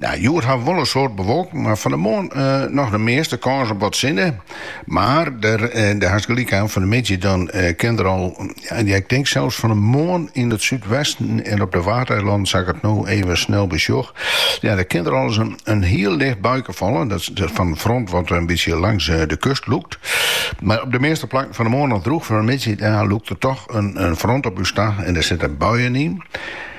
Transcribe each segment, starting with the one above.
Hjoed hat wol in soad bewolking, mar fan 'e moarn noch de measte kâns op wat sinne. Mar dêr hast gelyk oan, fan 'e middei dan kin der al, ja ik tink sels fan 'e moarn yn it súdwesten en op de Waadeilannen, sa't ik it no even snel besjoch, ja dêr kin der al ris in hiel licht buike falle, dat fan in front wat in bytsje langs de kust lûkt. Mar op de measte plakken fan 'e moarn noch drûch, fan 'e middei dan lûkt der toch in front op ús ta en dêr sitte buien yn.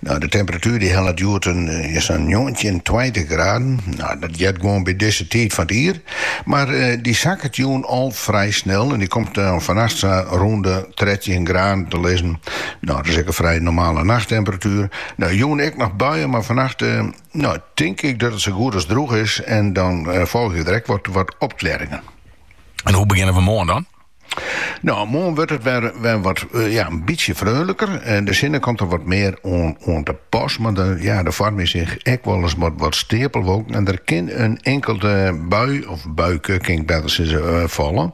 No, de temperatuer dy hellet hjoed sa'n njoggentjin, tweintich graden. No, dat heart gewoan by dizze tiid fan it jier. Mar dy sakket jûn al frij snel en dy komt dan fannacht sa rûn de trettjin graden te lizzen. No, dat is ek in frij normale nachttemperatuer. No, jûn ek noch buien, mar fannacht no, tink ik dat it sa goed as drûch is en dan folgje der ek wat opklearringen. En hoe begjinne we moarn dan? No, moarn wurdt it wer, wer wat eh, ja, in bytsje freonliker. En de sinne komt der wat mear oan, oan te pas. Mar der, ja, der foarmje sich ek wolris wat, wat steapelwolken. En der kin in inkelde bui, of buike, kin ik better sizze, eh, falle.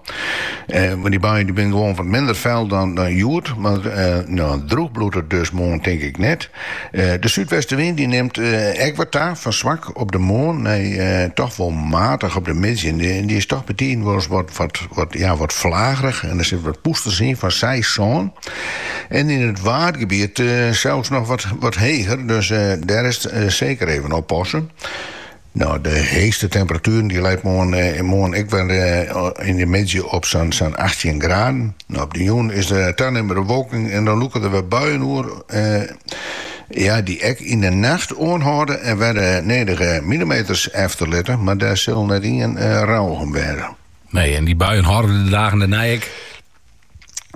Eh, mar dy buien dy binne gewoan wat minder fûl dan, dan hjoed. Mar eh, no, drûch bliuwt it dus moarn tink ik net. De súdwestewyn dy nimt ek wat ta, fan swak op de moarn nei toch wol matich op de middei. En dy is toch bytiden wolris wat ja wat flagerich en der sitte wat pûsters yn fan seis, sân. En yn it Waadgebiet sels noch wat heger, dus dêr is it seker even oppasse. No, de heechste temperatuer dy leit moarn ek wer yn de middei op sa'n achttjin graden. No, op de jûn is der tanimmende bewolking en dan lûke der wer buien oer, ja, dy't ek yn de nacht oanhâlde en wer de nedige milimeters efterlitte, mar dêr sil net ien rouwich om wêze. Nee, en dy buien hâlde de dagen dêrnei ek.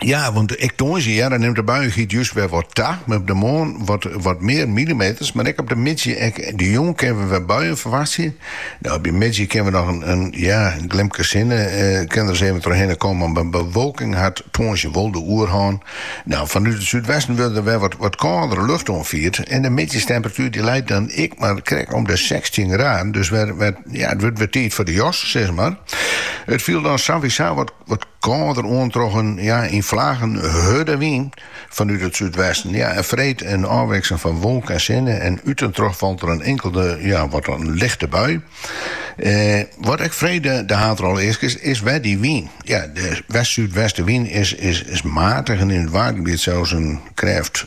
Ja, want ek tongersdei hear nimt de buiigens just wer wat ta. Op de moarn wat, wat mear millimeters, mar ek op de middei en de jûn kinne we wer buien ferwachtsje. No, op de middei kinne we noch in, in ja, glimke sinne eh, kin der ris even trochhinne kommen, mar bewolking hat tongersdei wol de oerhân. No, fanút it súdwesten wurdt der wer wat, wat kâldere lucht oanfierd en de middeitemperatuer dy leit dan ek mar krekt om de sechstjin graden, dus wer, wer, ja, it wurdt wer tiid foar de jas, sis mar. It fielt dan sawieso wat Wat kâlder oan troch in yn flagen hurde wyn fanút it súdwesten. En freed in ôfwikseling fan wolk en sinne en út en troch falt der in inkelde wat lichte bui. Wat ek freed de haadrolle easket, is wer dy wyn. De west-súdwestewyn is matich en yn it Waadgebiet sels in krêft.